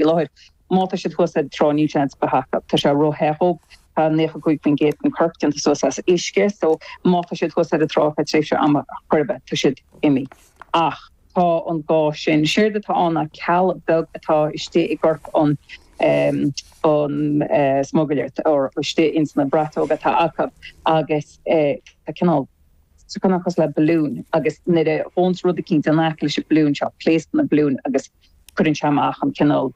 faoi láthair. Má tá siad thuas ar an trá níl aon seans acu. Tá sé róthe dóibh. Tá 95% den corp déanta suas as uisce so má tá siad thuas ar an trá thar tréimhse ama chor ar bith, tá siad imithe. Ach tá an ga sin. Séard atá ann ná ceall beag atá istigh i gcorp an an smugairle nó istigh ins na bratóga atá acu agus tá cineál so cineál cosúil le balloon agus nuair a ghabhanns rud eicínt in aice leis an balloon seo pléascann an balloon agus Cuireann sé amach an cineál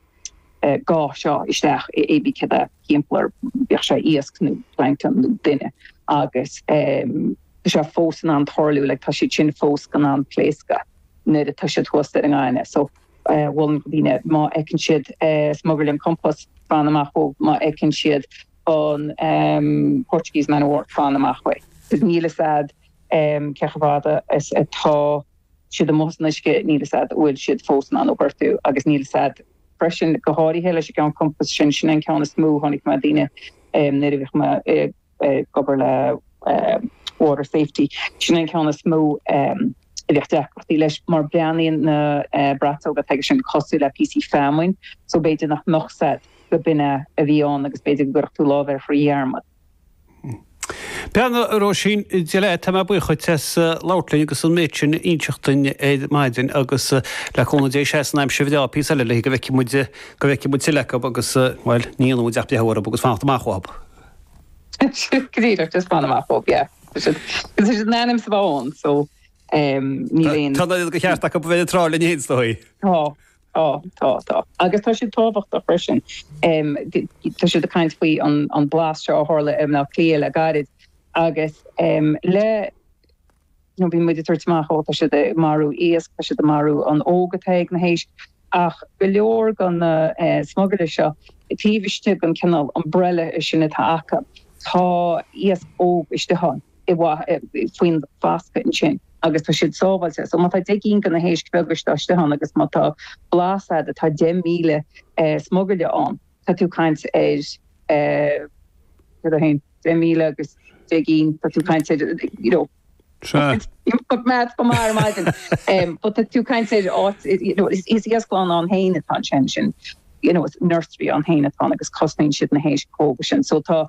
ga seo isteach i bpé céard atá timpeall air, bíodh sé iasc nó planctón nó duine, agus tá sé fós in ann tarlú, tá siad sin fós in ann pléascadh nuair atá siad thuas ar an ngaineamh. So, mholfainn do dhaoine, má fheiceann siad smugairle an chompáis, fan amach uaidh, má fheiceann siad an Portuguese man o' war, fan amach uaidh. Mar níl fhios a'd cé chomh fada is atá siad amuigh san uisce, níl a fhios agat an bhfuil siad fós in ann tú a ghortú agus níl a fhios agat freisin, go háirithe leis an gceann compáis sin, sin é an ceann is mó a chonaic mé daoine nuair a bhíodh mé ag obair le water safety, sin é an ceann is mó a bhíodh deacrachtaí leis mar breathnaíonn na bratóga atá aige sin cosúil le píosaí feamainne so b'fhéidir nach mbeadh a fhios agat gurb in é a bhí ann agus b'fhéidir go gcuirfeá do lámh air trí dhearmad. Bhuel a Róisín Gillette, tá mé buíoch dhuit as labhairt linn agus an méid sin a inseacht dúinn ar maidin agus le cúnamh Dé seasfaidh an aimsir bhreá píosa eile le go bhfeicfidh muid, go bhfeicfidh muid tuilleadh acu agus, bhuel, ní dhéanfaidh muid ach breathnú orthu agus fanacht amach uathu. Go díreach, just fan amach uathu, yeah. Is é sin an ainm sa bhfón so níl aon... Tá an ceart acu a bheith ar an trá linn fhéin is dóigh. Tá. Tá, tá, tá. Agus tá siad tábhachtach freisin. Tá siad ag caint faoi an mblás seo a tharla i mBleá Cliath le gairid agus le, you know, bíonn muid ag tabhairt amach, ó, tá siad ag marú iasc, tá siad ag marú an óg atá ag na héisc, ach go leor de na smugairle seo, taobh istigh den chineál umbrella sin atá acu, tá iasc óg istigh ann, faoin bhfoscadh ansin. agus tá siad sábháilte. So má tá deich gcinn de na héisc óga seo istigh ann agus má tá blás agat, tá deich míle smugairle ann. Tá tú ag caint ar cad é fhéin? deich míle agus deich gcinn, tá tú ag caint ar you know, níl maths agam ar maidin. Um, but tá tú ag caint ar, you know, is is iasclann a bhíonn atá ann ansin. You know, it's nursery a bhíonn atá ann agus cosnaíonn siad na héisc óga sin. So tá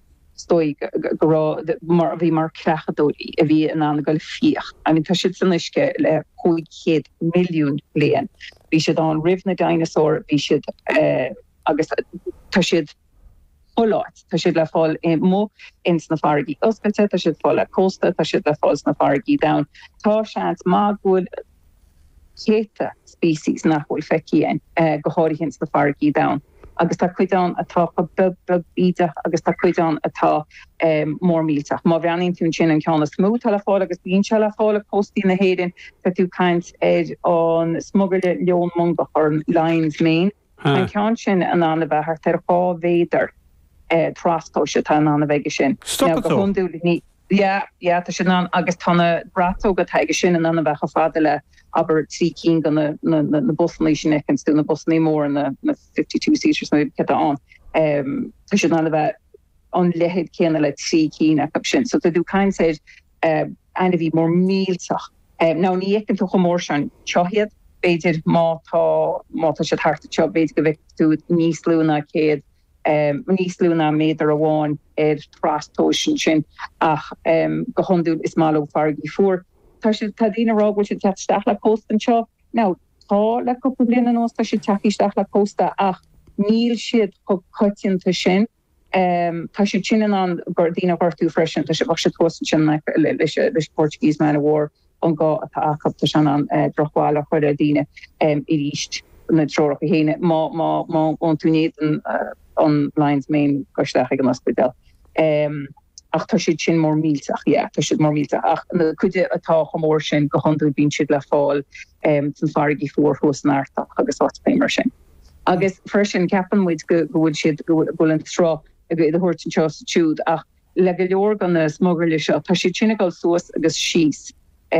is dóigh go raibh, mar bhí mar creachadóirí a bhí in ann a ghoil ag fiach. I mean, tá siad san uisce le 500 milliún bliain. Bhí siad ann roimh na dinosaur, bhí siad agus tá siad chuile áit. Tá siad le fáil amuigh ins na farraigí oscailte, tá siad le fáil le cósta, tá siad le fáil sna farraigí domhain. Tá seans maith go bhfuil. céadta species nach bhfuil feicthe againn, go háirithe ins na farraigí domhaine, agus tá cuid ann atá chomh beag beag bídeach agus tá cuid ann atá mór millteach. Má bhreathnaíonn tú ansin, an ceann is mó atá le fáil agus bíonn sé le fáil ag cóstaí na hÉireann, tá tú ag caint ar an smugairle leon mongach, or lion's mane. Tá an ceann sin in ann a bheith thart ar dhá mhéadar, an trastomhas atá in ann a bheith aige sin. Stopann tú? Go hiondúil ní. Yeah, yeah, tá siad in ann agus tá na braiteoga atá aige sin in ann a bheith chomh fada le, abair, trí cinn de na, na, na, na busannaí sin a fheiceanns tú, na busannaí móra, na, na fifty two seaters nó céard atá ann. Tá siad in ann a bheith an leithead céanna le trí cinn acu sin. So tá tú ag caint ar eh, ainmhí mór millteach, eh, now ní fheiceann tú chomh mór sin, anseo iad, b'fhéidir má tá, má tá siad thart anseo, b'fhéidir go bhfeicfidh tú níos lú ná céad, eh, níos lú ná méadar amháin ar trastomhas ansin, ach eh, go hiondúil is maith leo farraigí fuara. Tá siad, tá daoine ag rá go bhfuil siad ag teacht isteach le cósta anseo, now tá le cúpla bliain anuas, tá siad ag teacht isteach le cósta ach níl siad chomh coitianta sin. Tá siad sin in ann daoine a ghortú freisin. Tá sé, bheadh siad thuas ansin in aice leis an Portuguese Man o' War ón ga atá acu. Tá sé in ann drochbhail a chur ar dhaoine arís, na treoracha chéanna. Má théann tú in éadan an Lion's Mane, gabh isteach ag an ospidéal. Ach tá siad sin mór millteach, yeah, tá siad mór millteach. Ach an chuid atá chomh mór sin, go hiondúil bíonn siad le fáil sna farraigí fuara thuas san Artach agus áiteachaí mar sin. Agus freisin, ceapann muid go bhfuil siad, go bhfuil an sruth á dtabhairt anseo is ansiúd, ach le go leor de na smugairle seo, tá siad sin ag dul suas agus síos.